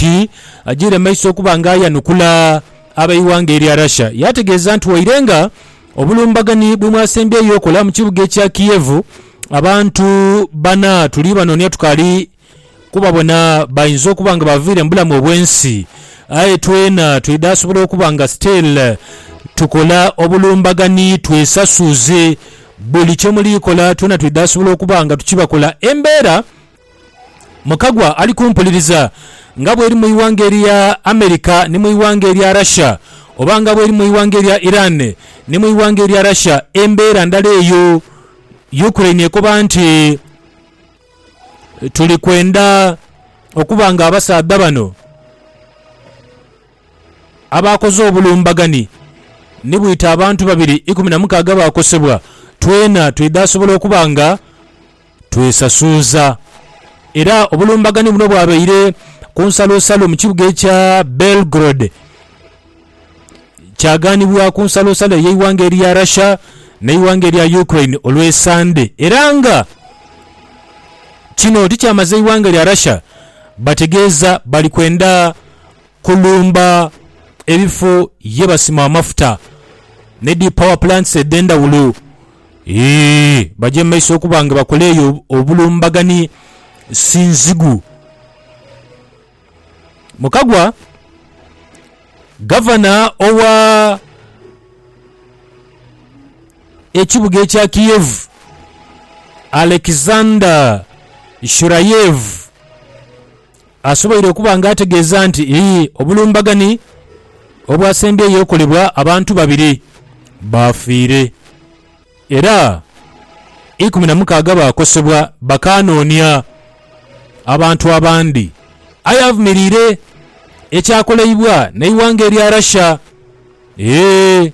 nti ajiire maiso okuba nga ayanukula ab'eighanga erya Russia yaategeeza nti waire nga obulumbaganhi bwemwasembyeyo okola mu kibuga ekya Kiev, abantu bana tuli banoonia tukaali kubabona bainza okuba nga baviire mu bulamu obw'ensi aye twena twidhasobola okuba nga still tukola obulumbaganhi twesasuuze buli kyemuliikola twena twidhasobola okuba nga tukibakola embeera Mukagwa ali kumpuliriza, nga bweri mu ighanga erya America ni mu ighanga erya Russia, oba nga bweri mu ighanga erya Iran ni mu ighanga erya Russia, embeera ndala eyo. Ukraine ekoba nti, Tuli kwenda okuba nga abasaadha bano abaakoze obulumbaganhi ni bwita abantu babiri ikumi na mukaaga baakosebwa, twena twidha sobola okuba nga. Twesasuuza era obulumbaganhi buno bwabaire ku nsalosalo mu kibuga ekya Belgrade kyaganibwa ku nsalosalo ey'eighanga erya Russia n'eighanga erya Ukraine olw'esande era nga kino tikyamaze eighanga erya Russia bategeeza bali kwenda kulumba ebifo ye basima amafuta ne dhi power plants edh'endhawulo. Eeh baje mu maiso okuba nga bakola eyo obulumbagani Sinzigu. Mu kagwa, Gavana owa ekibuga ekya Kiev, Alexander Shurayev, asoboire okuba nga ategeeza nti obulumbaganhi obwasembyeyo okolebwa abantu babiri baafiire era ikumi na mukaaga baakosebwa bakaanoonia abantu abandi aye avumiriire ekyakoleibwa n'eighanga erya Russia ee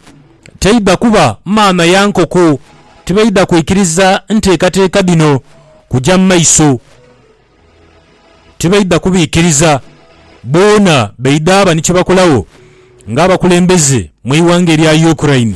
taidha kuba maama ya nkoko tibaidha kwikiriza nteekateeka dhino kuja mu maiso. tibaidha kubiikiriza. Boona baidha ba ni kye bakolagho ng'abakulembeze mu ighanga erya Ukraine.